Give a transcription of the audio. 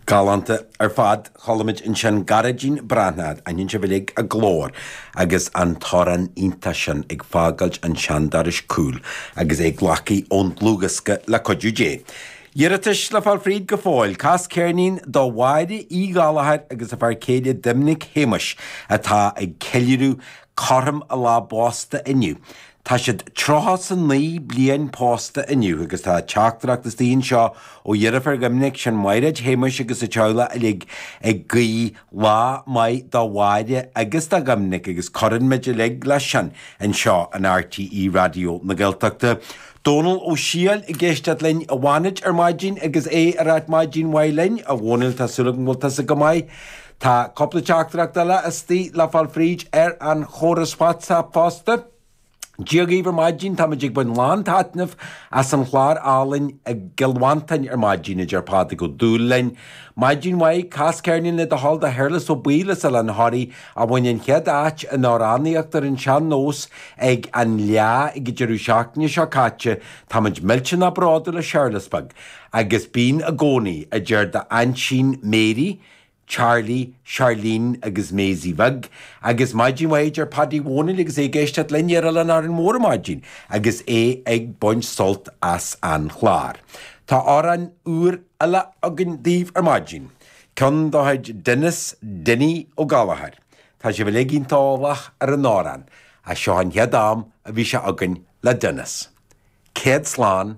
Galánta ar fad. Chualaimid ansin Gairdín Breathnach, aithníonn sibh uilig a glór agus an t-amhrán iontach sin Ag Fágáilt an tSeandorais cúil agus é glactha ón dlúthdhiosca Le Cuidiú Dé. Iarratais le fáil fríd go fóill. Cas ceirnín do Mháire Uí Ghallachóir agus a fear céile Doimnic Shéamuis atá ag ceiliúradh cothrom a lá pósta inniu. Tá siad tríocha is a naoi bliain pósta inniu agus tá teachtaireacht istigh anseo ó dheirfiúr Dhoiminic, sin Maighréad Shéamuis agus a teaghlach uilig ag guí lá maith do Mháire agus do Dhoiminic agus cuireann muid uilig leis sin anseo in RTÉ Raidió na Gaeltachta. Dónal Ó Siadhail ag éisteacht linn i bhFánaid ar maidin agus é ag rá maidin mhaith linn a Dhónaill tá súil agam go bhfuil tusa go maith. Tá cúpla teachtaireacht eile istigh le fáil fríd ar an chóras WhatsApp fosta. Dia dhaoibh ar maidin, táimid ag baint lán taitnimh as an chlár álainn i gCill Mhantáin ar maidin, a deir Pádraig Ó Dúlaing. Maidin mhaith, cas ceirnín le do thoil do Shéarlas Ó Baoill as Oileán Thoraí a bhain an chéad áit in amhránaíocht ar an sean nós ag an Fhleá ag deireadh seachtaine seo caite. Táimid millteanach bródúil as Séarlas beag. Agus bíonn i gcónaí, a deir d'aintín Mary. Charlie, Charlene agus Maisie Bheag agus maidin mhaith a deir Padaí Dhónaill agus é ag éisteacht linn ar Oileán Árainn Mhór ar maidin agus é ag baint sult as an chlár. Tá amhrán úr eile againn daoibh ar maidin, ceann dá chuid Denis, Dinny, Ó Gallachóir. Tá sibh uilig iontach eolach ar an amhrán ach seo an chéad am a bhí sé againn le Denis. Céad slán!